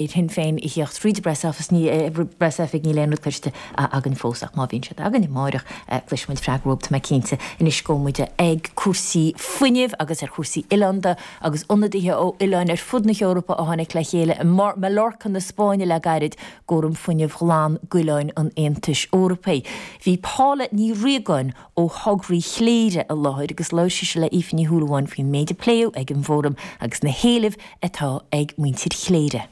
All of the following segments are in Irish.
ar Shinn Féin a theacht fríd a bpress office ní press oifig níl aon rud cloiste againn fós ach má bhíonn siad againn amáireach cloisfimid freagra romhat tá mé cinnte. Anois gabhfaidh muid ag cúrsaí fuinnimh agus ar chúrsaí oileánda agus ionadaithe ó oileáin ar fud na hEorpa a tháinig le chéile i Mallorca na Spáinne le gairid ag fóram fuinnimh ghlan d'oileáin an Aontais Eorpaigh. Bhí Paula Ní Riagáin ó thograí Chléire i láthair agus labhair sise le hAoife Ní Shúilleabháin faoin méid a pléadh ag an bhfóram agus na héilimh atá ag muintir Chléire.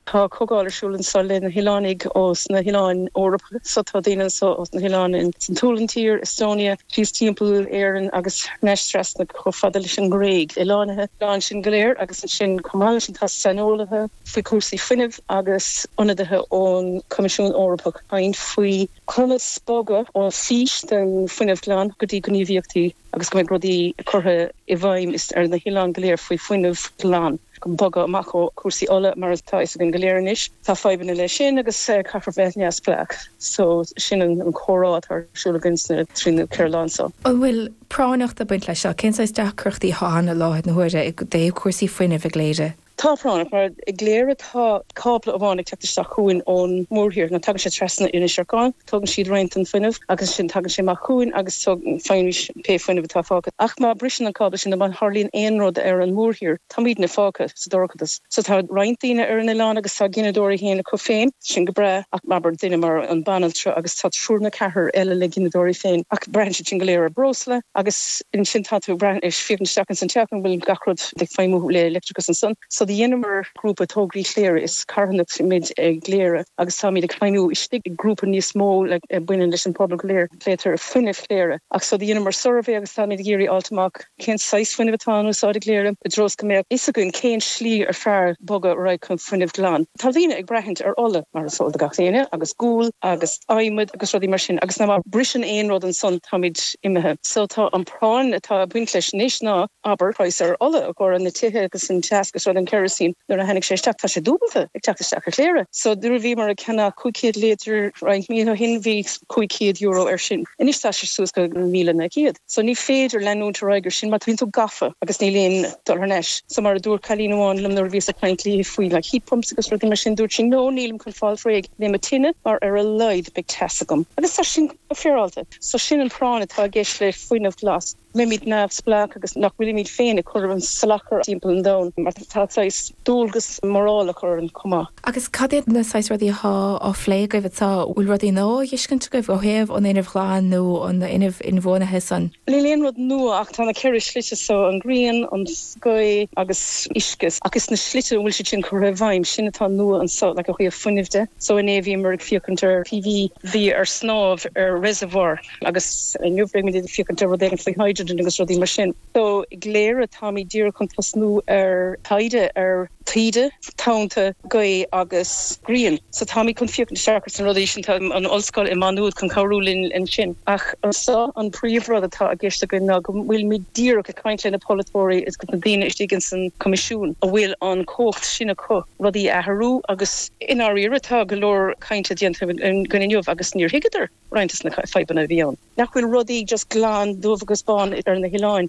Tá comhdháil ar siúl anso le na hoileánaigh ó sna hoileáin Eorpacha so. Tá daoine anso ó sna hoileáin in san tSualainn, tír Estonia, síos timpeall Éireann agus ansin trasna chomh fada leis an nGréig. Ó lár na n-oileán sin go léir agus ansin chomh maith leis sin tá saineolaithe faoi chúrsaí fuinnimh agus ionadaithe ón Coimisiún Eorpach ag caint faoi Conas bogadh ó fís den fuinneamh glan go dtí gníomhaíochtaí agus go mbeidh rudaí curtha i bhfeidhm ar na hoileáin go léir faoi fuinneamh glan chun bogadh amach ó chúrsaí ola mar atá fhios againn go léir anois, tá fadhbanna leis sin agus caithfear bheith neamhspleách. So sin an comhrá atá ar siúl againn sna trí nó ceithre lá anseo. An bhfuil práinneacht ag baint leis seo? Cén saghas deacrachtaí atá ann i láthair na huaire i dtaobh cúrsaí fuinnimh i gCléire? Tá práinneach, mar i gCléire tá cábla amháin ag teacht isteach chugainn ón mórthír, nó tagann sé trasna Inis Arcáin, tógann siad roinnt den fuinneamh agus ansin tagann sé amach chugainn agus faighimís pé fuinneamh atá fágtha. Ach má briseann an cábla sin nó má tharlaíonn aon rud ar an mórthír, táimídne fágtha sa dorchadas. So tá roinnt daoine ar an oileán agus tá gineadóirí féin acu féin, sin go breá, ach abair duine mar an banaltra agus tá triúr nó ceathrar eile le gineadóirí féin, ach braitheann siad sin go léir ar breosla agus ansin tá tú ag brath, ag féachaint isteach insan teach an bhfuil gach rud. ag feidhmiú le leictreachas ansan. So cad a dheineamar grúpa tograí Chléire is carthanacht muid i gCléire agus táimid ag feidhmiú istigh i grúpa níos mó a baineann leis an pobal go léir Meitheal Fuinnimh Chléire ach so dheineamar suirbhé agus táimid ag iarraidh fháilt amach cén saghas fuinneamh atá in úsáid i gCléire i dtreo is go mbeadh fhios againn cén slí ar fearr bogadh ar aghaidh chun fuinneamh glan. Tá daoine ag braithint ar ola mar is eol do gach éinne agus gual agus adhmad agus rudaí mar sin agus má briseann aon rud ansan táimid imithe so tá an práinn atá ag baint leis anois ná abair praghas ar ola i gcomhair na tithe agus an teas go soiléir an kerosene nuair a tháinig sé isteach tá sé dúbalta ag teacht isteach ar Chléire so nuair a bhíomar ag ceannach 500 líotar roinnt mí ó shin bhí 500 euro ar sin anois tá sé suas go míle naoi gcéad so ní féidir leanúint ar aghaidh ar sin mar bíonn tú gafa agus níl aon dul thar n-ais so mar a dúirt cailín amháin liom nuair a bhíos ag caint léi faoi like heat pumps agus rudaí mar sin dúirt sí no nílim chun fáil réidh le mo tine mar ar a laghad beidh teas agam agus tá sin go féaráilte so sin an práinn atá i gceist le fuinneamh glas. mbeimid neamhspleách agus nach bhfuilimid féin ag cur a salachar timpeall an domhain mar tá saghas dualgas morálach orainn chomh maith. Agus cad iad na saghas rudaí atá á phlé agaibh anseo? Bhfuil rudaí nua á dhiscuint agaibh ó thaobh an fhuinnimh ghlain nó an fhuinnimh inbhuanaithe san? Níl aon rud nua ach tá na ceithre slite seo, an ghrian, an ghaoth agus uisce, ach is na slite a bhfuil siad sin curtha i bhfeidhm, sin atá nua anseo, like ó thaobh fuinnimh de. So inné bhíomar ag féachaint ar PV a bhí ar snámh ar reservoir, Agus inniu beimid ag féachaint ar rud éigin faoi hydrogen agus rudaí mar sin. So i gCléire táimid díreach chun tosnú ar taighde ar taoide, tonnta, gaoth agus grian. So táimid chun féachaint isteach ar na rudaí sin. Tá an ollscoil i Maigh Nuad chun cabhrú linn ansin. Ach anseo an príomh rud atá i gceist againn ná go bhfuilimid díreach ag caint le na polaiteoirí agus na daoine istigh insan Coimisiún a bhfuil an cumhacht sin acu rudaí a athrú agus i ndáiríre tá go leor cainte déanta againn inniu agus níor thuigeadar Roinnt de na fadhbanna a bhí ann nach bhfuil rudaí just glan dubh agus bán ar na hoileáin.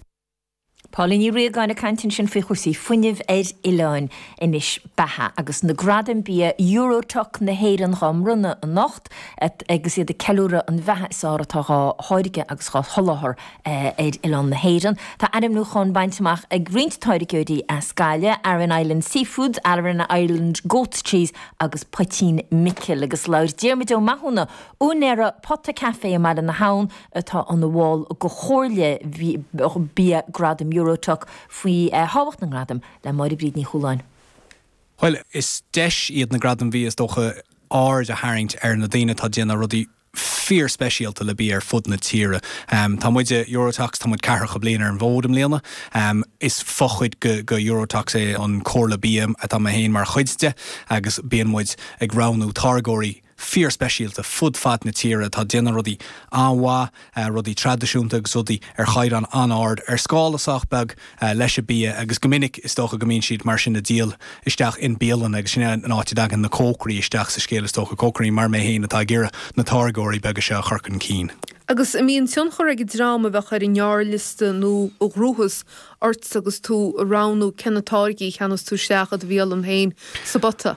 Pauline Ní Riagáin ag caint ansin faoi chúrsaí fuinnimh ar oileáin. Anois, beatha, agus na gradaim bia Euro-Toques na hÉireann dhá mbronnadh anocht agus iad ag ceiliúradh an bheatha is fearr atá dhá tháirgeadh agus dhá sholáthar ar oileán na hÉireann. Tá ainmniúcháin bainte amach ag roinnt táirgeoirí as Gaillimh, Aran Island Seafoods, Aran Island Goats Cheese agus Poitín Micil agus labhair Diarmuid Ó Mathúna Úinéir Pota Café i mBaile na hAbhann atá ina bhall de Chomhairle Bia Gradaim Euro-Toques faoi thábhacht na ngradam le Máire Bríd Ní Chualáin. Bhuel, is deis iad na Gradaim Bhia is dócha aird a tharraingt ar na daoine atá ag déanamh rudaí fíor-speisialta le bia ar fud na tíre. Tá muide, Euro-Toques, tá muid ceathracha bliain ar an bhfód i mbliana. Is fochuid de Euro-Toques é an Comhairle Bia atá mé féin mar chuid de agus bíonn muid ag roghnú táirgeoirí, fíor speisialta fud fad na tíre atá ag déanamh rudaí an-mhaith, rudaí traidisiúnta agus rudaí ar chaighdeán an-ard, ar scála sách beag leis an bia agus go minic is dócha go mbíonn siad mar sin ag díol isteach i mbialanna agus sin é an áit a dtagann na cócairí isteach sa scéal is dócha, cócairí mar mé féin atá ag iarraidh na táirgeoirí beaga seo a chur chun cinn. Agus an mbíonn tionchar ag an dream a bheadh ar an ngearrliosta nó a ghnóthós ort agus tú ag roghnú cé na táirgí a cheannós tú isteach i do bhialann féin sa bpota?